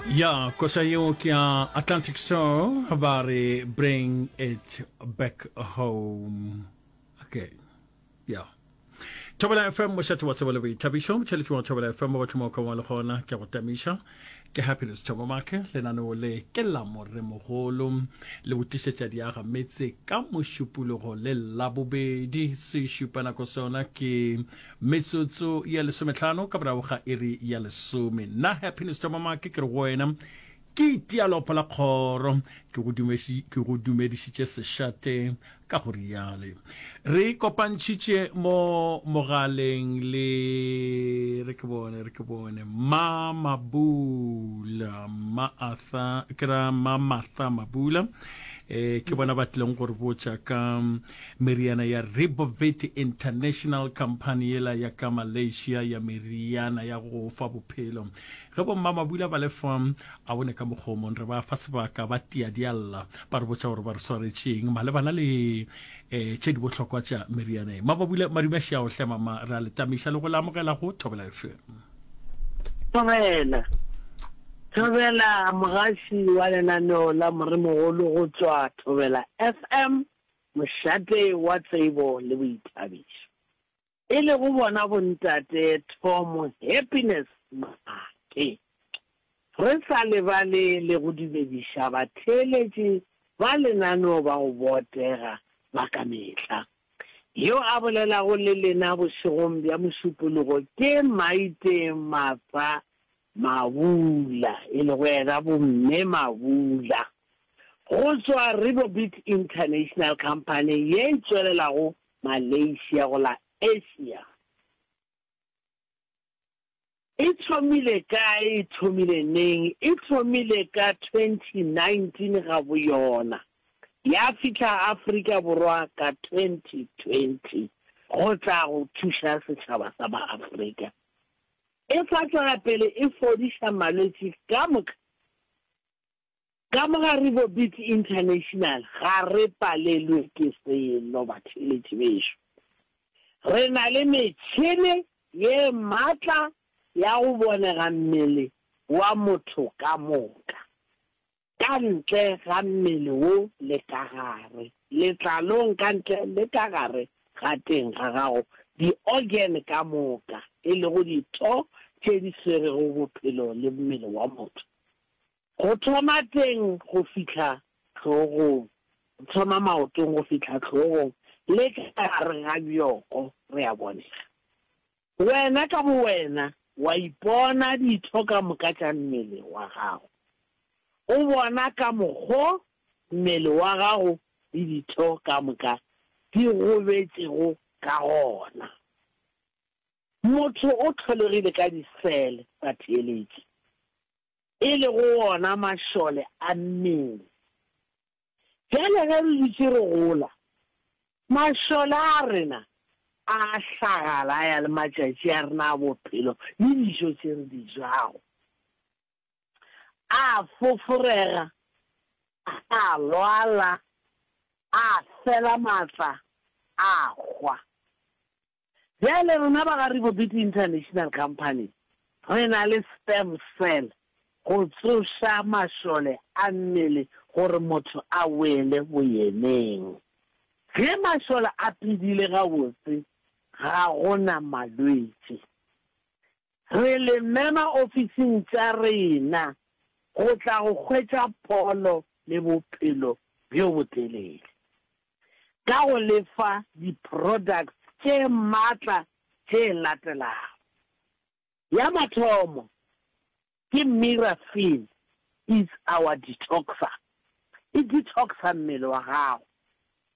ya koša yeo ke ya atlantic soul ba re bring it back home okay ya thobela fm mošate wa tsebo le boithabišo motšheletši wa thobela fm wa batlhomo ka wa le gona ke go tamiša ke happiness thobo make lenaneo le ke la moremogolo le go tlišetša diaga metse ka mošupologo le labobedi se šupa nako sona ke Metsotso ya lesometlhano ka borago ga iri ya lesome. Nna Happiness Tomamake ke re go wena ke itia lopo la kgoro ke go dumesi ke go dumedišitše sešate ka go riale re kopantšhitše mo mogaleng le re ke bone re ke bone ma mabula ma atha ke ra ma matha mabula eh ke bona ba tlileng gore botša ka Meriana ya Ribovit International, khamphani yela ya ka Malaysia ya meriana ya go fa bophelo. Ge bommamabula ba le fa a bone ka mokgomong, re ba fa sebaka ba tia dialla, ba re botša gore ba re swaretšeng malebana le e, tše di bohlokwa tša meriana ye. Mababula Madumešiao, hle mama, re a le tamiša le go le amogela go Thobela FM. Thobela, Thobela, mogaši wa lenaneo la Moremogolo go tšwa Thobela FM. mošate wa tsebo le boithabišo, e lego bona Bontate Tom Happiness Maake. Re sa lebale le go dumediša batheeletši ba lenaneo ba go botega ba ka mehla. Yo a bolelago le lena bošegong bja Mošupologo ke Maite Martha Mabula, e lego yena Bomme Mabula, go tšwa Ribobit International Company ye e tšwelelago Malaysia go la Asia. E thomile kae? E thomile neng? E thomile ka 2019 ga bo yona, ya fihla Afrika Borwa ka 2020 go tla go thuša setšhaba sa ba Afrika. E tla tloga pele e fodiša malwetši ka moka. Ka mo ga Ribobit International ga re palelwe ke selo, batheeletši bešo. Re na le metšhene ye matla ya go bonega mmele wa motho ka moka. ka ntle ga mmele wo le ka gare letlalong, ka ntle le ka gare ga teng ga gago, di-organ ka moka, e lego ditho tše di swerego bophelo le mmele wa motho, go thoma teng go fihla hlogong, go thoma maotong go fihla hlogong le ka gare ga bjoko, re a bonega. Wena ka bowena wa ipona ditho ka moka tša mmele wa gago. O bona ka mokgo mmele wa gago le ditho ka moka di gobetšego ka gona. Motho o tlholegile ka disele tsa theeletši, e lego wona mašole a mmele. Bjale ge re dutše re gola, mašole a rena a a hlagala a ya le matšatši a rena a bophelo le dijo tše re di jago. A a foforega, a a lwala, a a fela matla, a a hwa. Bjale rena ba ga Ribobiti International Company re na le sperm cell go tsoša mašole a mmele gore motho a wele boyeneng. Ge mašole a phedile gabotse ga go na malwetši. Re le mema ofising tša rena go tla go hwetša pholo le bophelo bjo botelele ka go le fa di-products tše matla tše latelago. Ya mathomo ke Mirafin It's Our Detoxer, e detoxa mmele wa gago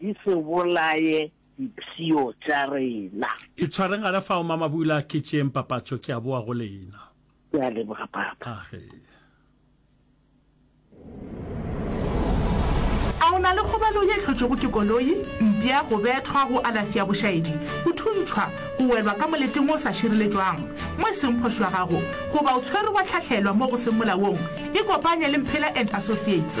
Di se bolaye dipshio tša rena. Itshwareng gare fao, Mama Bula. Ke tšeeng papatšo, ke a boa go lena. Ke a leboga, Papa. Age. A o na le kgobalo ye e hlotšwego ke koloi, mpša, go bethwa, go alafi ya bošaedi, go thuntšhwa, go welwa ka moleteng wo o sa šireletšwang mo e seng phošo ya gago, goba o tshwerwe wa hlahlelwa mo go seng molaong? Ikopanye le Mphela and Associates.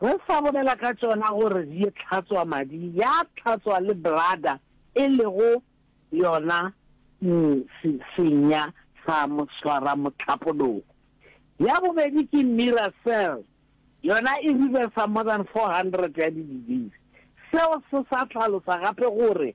Re sa bolela ka tšona gore di ye tlhatswa madi, ya tlhatswa le bladder e lego yona se, senya sa moswaramohlapologo. Ya bobedi ke Miracell, yona e reversa more than 400 ya di-disease. Seo se sa hlalosa gape gore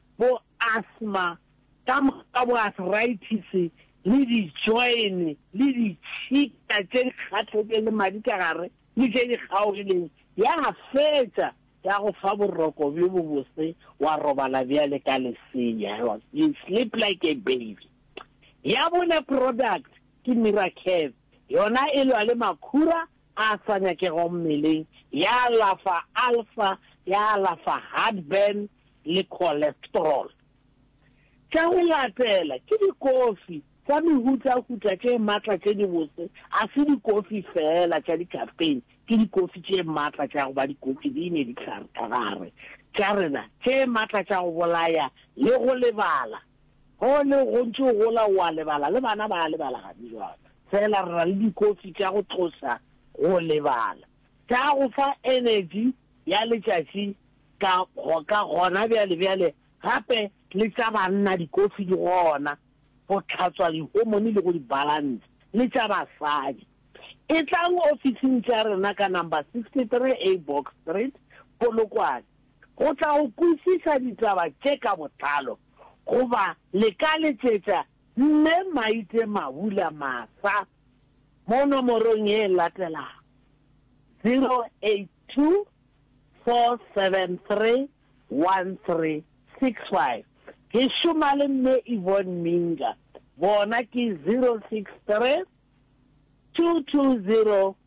bo asthma, ka moka ka bo arthritis le dijoene le ditšhika tše di kgathletšeng le madi ka gare le tše di kgaogileng, ya fetša ya go fa boroko bjo bobose, wa robala bjale ka lesea, you sleep like a baby. Ya bone product ke Miracare, yona e lwa le makhura a sa nyakego mmeleng ya alafa alsa, ya alafa heartburn le cholesterol. Tša go latela ke dikofi tša mehutahuta tše matla tše dibotse, ga se dikofi feela tša di-caffeine, ke dikofi tše matla tša go ba dikofi di ne dihlare ka gare tša rena tše matla tša go bolaya le go lebala. Go ne go ntše go gola o a lebala, le bana ba a lebala gane bjale. Fela re na le dikofi tša go tloša go lebala, tša go fa energy ya letšatši ka ka gona bjale bjale, gape le tša banna dikofi di gona go tlhatswa dihomone le go di balance, le tša basadi. Etlang ofising tša rena ka number 63 A Box Street, Polokwane. go tla go kwešiša ditaba tše ka botlalo goba le ka letšetša Mme Maite Mabula Masa mo nomorong ye e latelago, 0824731365. Ke šoma le Mme Yvonne Minga, bona ke 0632202666.